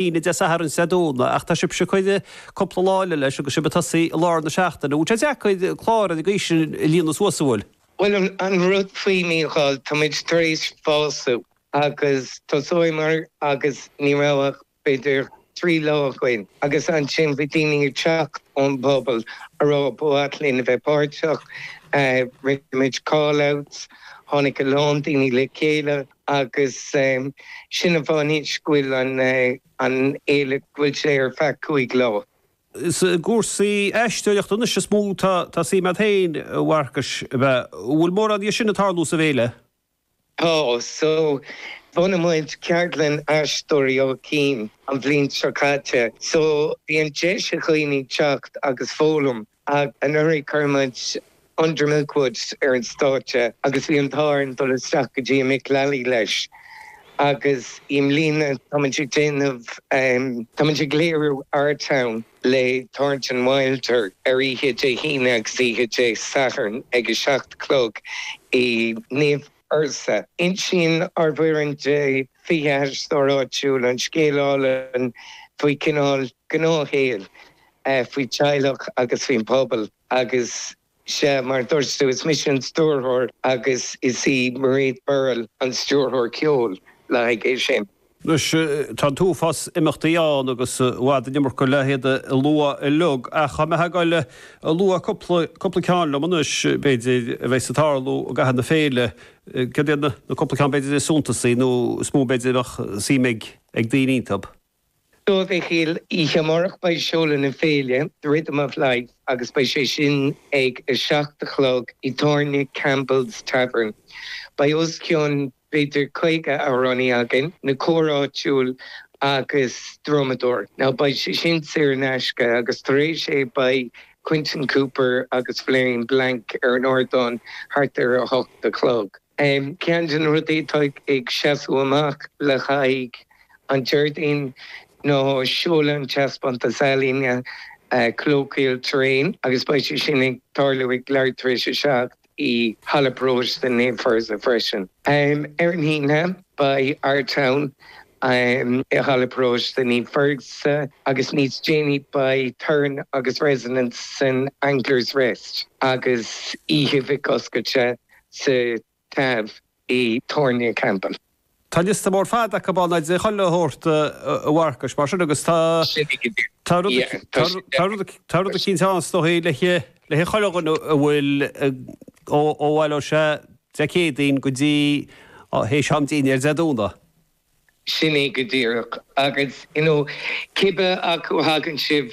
Aoine, Dé Sathairn, is Dé Domhnaigh, ach tá sibse ag cur cúpla lá eile leis agus sib ag tosaí i lár na seachtaine. An bhfuil sé deacair clár ag an aois sin a líonadh suas, an bhfuil? Bhuel, an rud faoi Mícheál, táimid tar éis fású agus thosaíomar agus ní raibh ach b'fhéidir trí lá againn agus ansin bhí daoine ag teacht ón bpobal ag rá ba mhaith linn a bheith páirteach, rinne muid call-outs, tháinig a lán daoine le chéile. agus sin an bunús go bhfuil an fhéile, go bhfuil sé ar feadh cúig lá. Is i gcúrsaí aisteoireachta anois is mó atá suim agat féin, a Mharcais, ab ea? An bhfuil mórán dhe sin ag tarlú sa bhféile? Tá so. Bhunaigh muid ceardlann Aisteoirí Áth Cinn an bhliain seo caite so bíonn deis ag dhaoine teacht agus foghlaim. Ach anuraidh chuir muid Under Milk Wood ar an stáitse agus bhí an t-ádh orainn dul isteach go dtí an Mick Lally leis agus i mbliana tá muid ag déanamh, tá muid ag léiriú Our Town le Thornton Wilder ar oíche Dé hAoine agus oíche Dé Sathairn ag a seacht a chlog i Naomh Fursa. Insíonn ár bhfoireann de 20 aisteoir áitiúil an scéal álainn faoi chineál gnáthshaoil, faoi theaghlach agus faoin bpobal agus sea, mar a dúirt tú, is mise an stiúrthóir agus is í Mairéad Berrill an stiúrthóir ceoil le haghaidh é sin. Anois, tá an t-uafás imeachtaí ann agus i bhfad an iomarca le hiad a lua uilig, ach tá mé ag gabháil a lua cúpla, cúpla ceann liom anois, b'fhéidir, a bheas ag tarlú i gcaitheamh na féile. Céard iad na cúpla ceann, b'fhéidir, is suntasaí nó is mó, b'fhéidir, a bheadh suim ag daoine iontu? So, a Mhichíl, oíche amárach beidh seoladh na féile, The Rhythm of Life agus beidh sé sin ag a seacht a chlog i dtábhairne Campbell's Tavern. Beidh os cionn b'fhéidir caoga amhránaí againn, na cóir áitiúil agus drumadóir. Ná beidh sé sin saor in aisce agus tar éis é beidh Quentin Cooper agus Floriane Blancke ar an ardán thart ar a hocht a chlog. Ceann de na rudaí atá ag seasamh amach le haghaidh an Déardaoin ná seoladh an taispeántas ealaíne 'Colloquial Terrain' agus beidh sé sin ag tarlú ag leathuair tar éis a seacht. i Halla Paróiste Naomh Fursa freisin. Ar an Aoine, beidh Our Town i Halla Paróiste Naomh Fursa agus níos déanaí beidh Turn agus Resonance san Anglers Rest agus oíche mic oscailte sa Tav i dTáin Campbell. Tá liosta mór fada acu ann, agus é chuile shórt a Mharcais, mar sin, agus tá rud eicínt ann, is dóigh, le haghaidh chuile dhuine a bhfuil ó bhaile, ó sea, Dé Céadaoin go dtí théis am dinnéir Dé Domhnaigh. Sin é go díreach, agus, you know, cibé acu a thagann sibh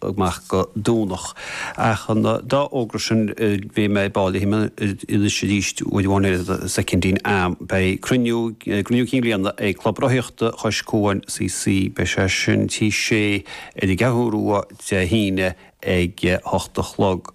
amach go Domhnach. Ach an dá fhógra sin bhí mé ag báil léi anois arís with one ear the second in am. Beidh cruinniú cruinniú cinn bliana ag Club Rothaíochta Chois Cuain CC. Beidh sé sin Tigh Sé ar an gCeathrú Rua Dé hAoine ag a hocht a chlog.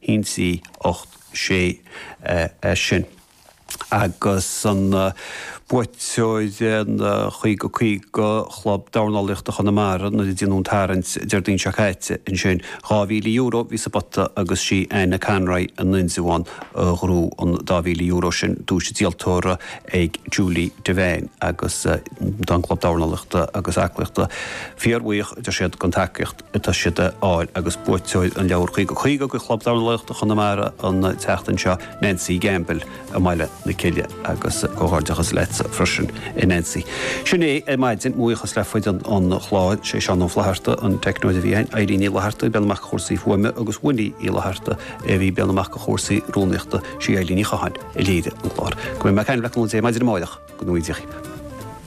hionsaí 8 6 sin agus an buaiteoir an chaoga caoga Chlub Dornálaíochta Chonamara nuair a déanadh an tarraingt Déardaoin seo caite ansin. Dhá mhíle euro bhí sa bpota agus sí Áine Conroy in Indreabhán a ghnóthaigh an dá mhíle euro sin, duais díoltóra ag Julie Devane agus tá an Club Dornálaíochta agus Aclaíochta fíor-bhuíoch, a deir siad, den tacaíocht. atá siad a fháil agus buaiteoir an leabhair 50-50 de Chlub Dornálaíochta Chonamara an tseachtain seo, Nancy Gamble, i mBaile na Cille agus comhghairdeachas leat freisin a Nancy. Sin é ar maidin, buíochas le foireann an chláir, sé Seán Ó Flatharta, an teicneoir a bhí ann, Eileen Ní Fhlatharta, ag breathnú amach do chúrsaí fuaime agus Winnie Uí Fhlatharta a bhí ag breathnú amach do chúrsaí rúnaíochta, sí Eileen Ní Chatháin a léirigh an clár. Go mbeidh mé ag caint le cúnamh Dé maidin amárach go ngnóthaí Dia dhaoibh.